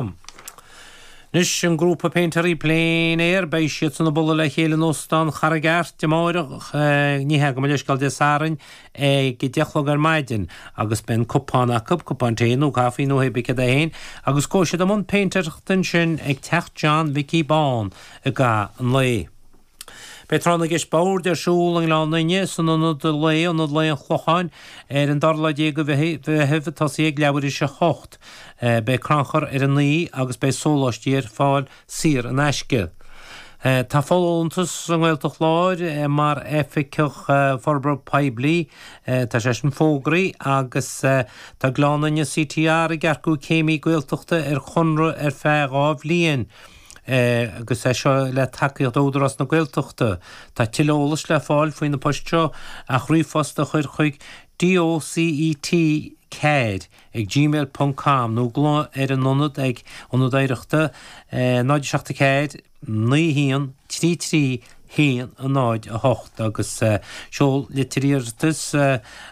Anois, an grúpa péintéirí plein air, beidh siadsan ag bualadh le chéile in Óstán Charraig Airt amáireach, ní hea, go mba leithscéal Dé Sathairn, ag a deich a chlog ar maidin, agus beidh an cupán acu, cupán tae nó caifí nó hé bith céard é féin, agus gabhfaidh siad i mbun péintéireachta ansin ag Teach John Mhicí Bán i gcaitheamh an lae. Beidh Tráth na gCeist Boird ar siúl i nGleann Fhinne, san ionad lae, Ionad Lae an Chlocháin, ar an dara lá déag de mhí Mheithimh. Tosóidh sé ag leathuair tar éis a 8. Beidh crannchur ar an oíche agus beidh sóláistí ar fáil saor in aisce. Tá folúntas sa nGaeltacht Láir mar Oifigeach Forbartha Poiblí, tá sé sin fógraithe, agus tá Gleann Fhinne CTR ag earcú céimí Gaeltachta ar chonradh ar feadh dhá bhliain. agus é seo le tacaíocht ó Údarás na Gaeltachta. Tá tuilleadh eolais le fáil faoi na poist seo ach ríomhphost a chur chuig DOCET, care ag gmail ponc com nó glaoch ar an ionad ag, Ionad Oidhreachta, 074 91 33 1, 0, 8 agus seol litir iarratais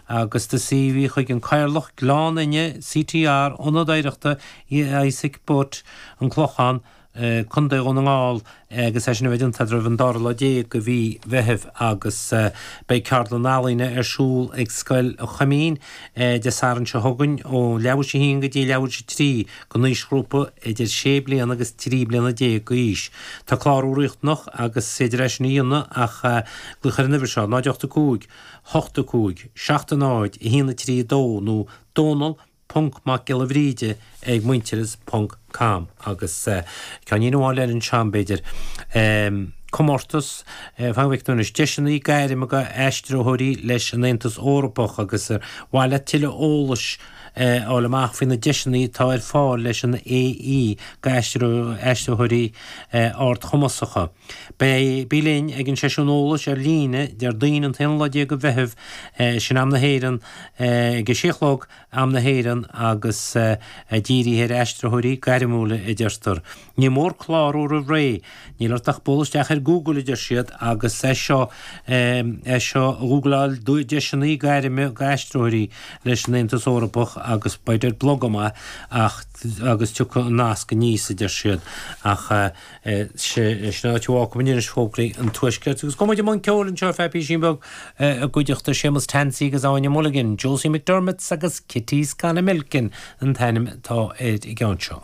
agus do CV chuig an Cathaoirleach, Gleann Fhinne, CTR, Ionad Oidhreachta Isaac Butt, An Clochán, Co. Dhún na nGall, agus é sin a bheith déanta roimh an 12 lá de mhí Mheithimh agus beidh ceardlann ealaíne ar siúl ag Scoil Choimín Dé Sathairn seo chugainn ó leathuair tar éis a 1 go dtí leathuair tar éis a 3, don aoisghrúpa idir sé bliana agus trí bliana déag d'aois. Tá clárú riachtanach agus is féidir é sin a dhéanamh ach glaoch ar an uimhir seo, 085 85 70 1 3 2 nó donal.macgiollabhríde ag muintearas ponc com agus ceáinnín amháin eile anseo b'fhéidir. Comórtas, Faigh amach anois deiseanna gairme d'aistritheoirí leis an Aontas Eorpach agus ar mhaith leat tuilleadh eolais, a fháil amach faoi na deiseanna atá ar fáil leis an AE d'aistritheoirí ardchumasacha. Bí linn ag an seisiún eolais ar líne Déardaoin an t-aonú lá déag de Mheitheamh, sin am na hÉireann, ag a sé a chlog, am na hÉireann, agus dírithe ar aistritheoirí gairmiúla, a deirtear. Ní mór clárú roimh ré. Níl ort ach bualadh isteach ar Google, a deir siad, agus é seo, é seo, gúgláil deiseanna gairme d'aistritheoirí leis an Aontas Eorpach agus beidh ar blog amach agus tiocfaidh an nasc aníos, a deir siad. Ach. Sin áit a bhfágfaidh muid anois fógraí an Tuaiscirt. Agus gabhfaidh muid i mbun ceoil anseo feadh písín beag i gcuideachta Séamus Tansey agus Áine Mulligan, Josie McDermott's agus Kitty's Gone A-Milking an t-ainm atá ar an gceann seo.